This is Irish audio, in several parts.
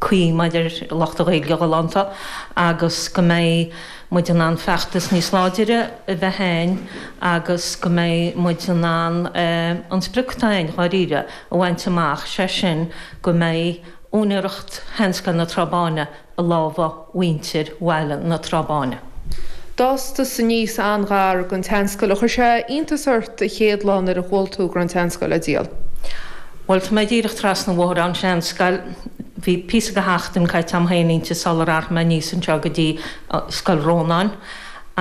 cuí mar a déarfadh lucht na Gaeilge galánta agus go mbeidh muid in ann feachtas níos láidre a bheith a'inn agus go mbeidh muid in ann an sprioc atá a'inn, dháiríre, a bhaint amach, sé sin go mbeidh úinéireacht seanscoil na Trá Báine i lámha. mhuintir Bhaile na Trá Báine. D'fhás tusa aníos an-ghar don tseanscoil. Ar chuir sé iontas ort an chéad lá nuair a chuala tú go raibh an tseanscoil á díol? Bhuel, tá mé díreach trasna an bhóthair ón seanscoil. Bhí píosa de sheachtainí caite agam féin inti sular athraigh mé aníos anseo go dtí Scoil Rónáin.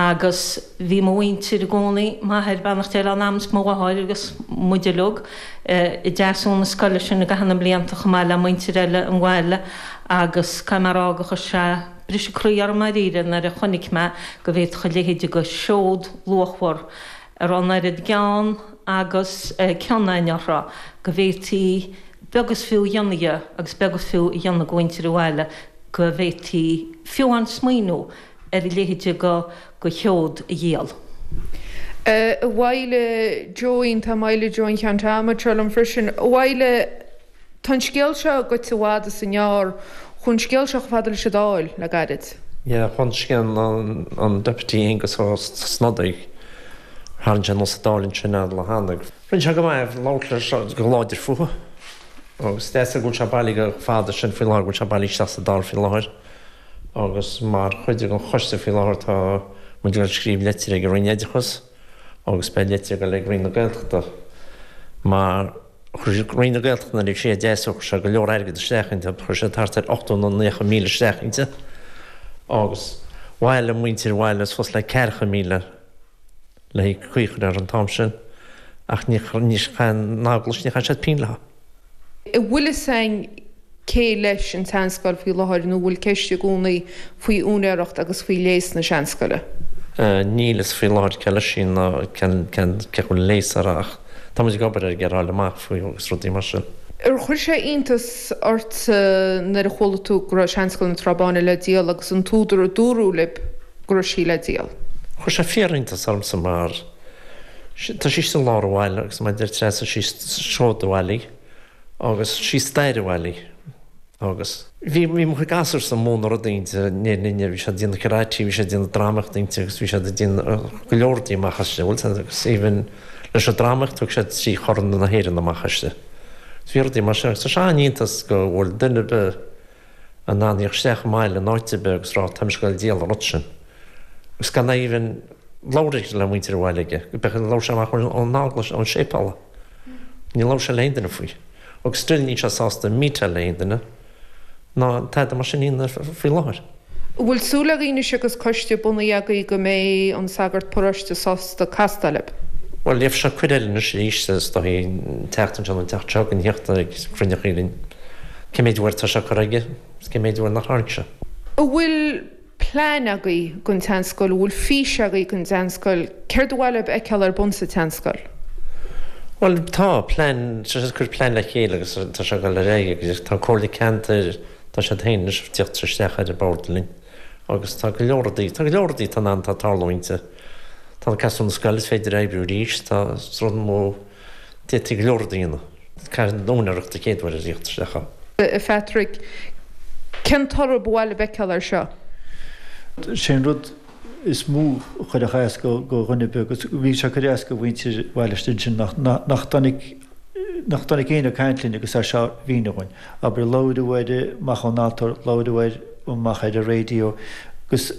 Agus bhí mo mhuintir i gcónaí, m'athair, beannacht Dé lena anam, agus mo mháthair agus muid uilig, i dtaithí na scoile sin i gcaitheamh na mblianta chomh maith le muintir eile an bhaile. Agus caithfidh mé a rá gur chuir sé briseadh croí orm dáiríre nuair a chonaic mé go bhféadfadh a leithéid de sheod luachmhar, a raibh an oiread gean agus cion againn uirthi, go bhféadfaí beag is fiú a dhéanamh dhe agus beag is fiú a dhéanamh de mhuintir an bhaile, go bhféadfaí fiú amháin smaoineamh ar a leithéid de sheod a dhíol. A Mháidhc Joeín, tá Máidhc Joeín Ceannt anseo liom freisin. Abhaile. Tá an scéal seo gaibhte i bhfad is i ngearr. Chuaigh an scéal seo chomh fada leis an Dáil le gairid. Yeah, chuaigh scéal an Deputy Aengus Ó Snodaigh thar an Tionól sa Dáil ansin ar lá Shanndair. Rinne sé go maith é, labhair sé go láidir fúthu agus is deas é go bhfuil sé bailithe chomh fada sin faoi láthair, go bhfuil sé bailithe isteach sa Dáil faoi láthair agus mar chuid den choiste faoi láthair tá muid ag scríobh litir ag an Roinn Oideachais agus beidh litir ag dul ag Roinn na Gaeltachta mar Chuir Roinn na Gaeltachta nuair a bhí sí á deasú chuir sé go leor airgid isteach inti, chuir sé thart ar ochtó nó naocha míle isteach inti agus bhailigh muintir an bhaile suas le ceathracha míle le cur ar an t-am sin ach níor chaith an Eaglais, níor chaith siad pingin léi. Bhfuil fhios a'inn Cé leis an tseanscoil faoi láthair nó an bhfuil ceist i gcónaí faoi úinéireacht agus faoi léas na seanscoile? Níl fhios faoi láthair cé leis í ná cé a bhfuil léas air ach tá muid ag obair air ag iarraidh fáil amach faoi agus rudaí mar sin. Ar chuir sé iontas ort nuair a chuala tú go raibh Seanscoil na Trá Báine le díol agus an t-údar a dúradh libh go raibh sí le díol? Chuir sé fíor-iontas ormsa mar tá sí sa lár an bhaile agus mar a dúirt Treasa, sí seod an bhaile í. Agus sí stair an bhaile í. Agus. Bhí, bhí mo chuid gasúrsa, ag na rudaí inti, naíonra inti, bhí siad ag déanamh karate, bhí siad ag déanamh dramaíochta inti agus bhí siad ag déanamh go leor rudaí amach aisti, bhuel sin, agus even leis an dramaíocht thug siad trí chorn na hÉireann amach aisti. Bhí rudaí mar sin agus tá sé an-iontas go bhfuil duine ar bith, A' tíocht isteach i mbaile in áit ar bith agus a rá, Táim ag goil díol an rud sin. Agus gan é even labhartha le muintir an bhaile aige. B'fhéidir gur labhair sé amach ón eaglais, ón séipéal é. Níor labhair sé le haon duine faoi. Agus still níl sé sásta meetáil le haon duine ná tada mar sin iad faoi láthair. An bhfuil súil agat anois agus coiste bunaithe agaibh go mbeidh an sagart paróiste sásta castáil libh? Bhuel, dhéanfadh sé cuid eile anois arís is dóigh, teacht ansin an tseachtain seo gan theacht ag cruinniú eile. Cé méid uair tá sé curtha aige is cé méid uair nach dtáinig sé. An bhfuil plean agaibh don tseanscoil? An bhfuil fís agaibh don tseanscoil? Céard ba mhaith libh a fheiceáil ar bun sa tseanscoil? Bhuel tá, plean, tá sé ag cur plean le chéile agus tá sé ag dul ar aghaidh agus tá an Comhairle Ceantair, tá siad féin anois ag tíocht isteach ar an bhord linn agus tá go leor rudaí, tá go leor rudaí, tá an, tá tarlúint, tá an, costas na scoile, is féidir oibriú arís, tá rudaí, D'eitigh go leor daoine caint na úinéireachta céaduaire a thíocht isteach ann. A Phatrick, cén toradh ba mhaith libh a fheiceáil ar seo? Sé an rud is mó a chuir as do dhaoine beag, agus bhí sé ag cur as do mhuintir Bhaile Stiabhna sin, nach dtáinig, nach dtáinig éinne ag caint linn agus é seo a mhíniú dhúinn. Abair, labhraíodh air amach ón altóir, labhraíodh air amach ar an raidió, agus.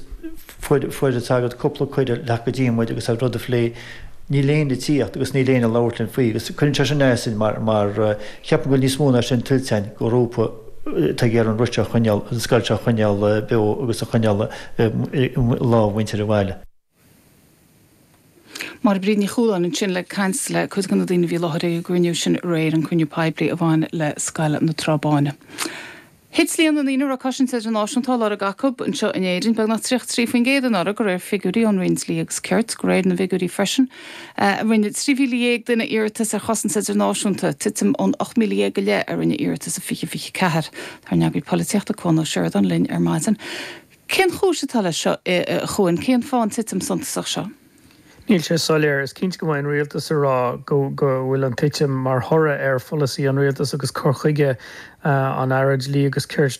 fuair, fuair an sagart cúpla cuireadh a theacht go dtí muid agus an rud a phlé, níl éinne ag tíocht agus níl éinne ag labhairt linn faoi agus cuireann sé sin asainn mar, mar cheapfainn go bhfuil níos mó ná sin tuillte againn, grúpa atá ag iarraidh an rud seo a choinneáil, an scoil seo a choinneáil beo agus a choinneáil i lámha mhuintir an bhaile. Máire Bríd Ní Chualáin ansin ag caint le cuid de na daoine a bhí i láthair ag an gcruinniú sin aréir, an cruinniú poiblí a bhain le Scoil na Trá Báine. Thit líon na ndaoine a raibh cosaint idirnáisiúnta á lorg acu anseo in Éirinn beagnach 33% anuraidh, de réir figiúirí ón Roinn Dlí agus Cirt. De réir na bhfigiúirí freisin, rinne 13,000 duine iarratas ar chosaint idirnáisiúnta, titim ón 18,000 go leith a rinne iarratas in 2024. Tá ár n-eagraí polaitíochta Cuan Ó Seireadáin linn ar maidin. Cén chúis atá leis seo, a Chuain? Cén fáth an titim suntasach seo? Níl sé soiléir. Is cinnte go mbeidh an Rialtas ag rá go bhfuil an titim mar thoradh ar pholasaí an Rialtais agus cur chuige an Aire Dlí agus Cirt,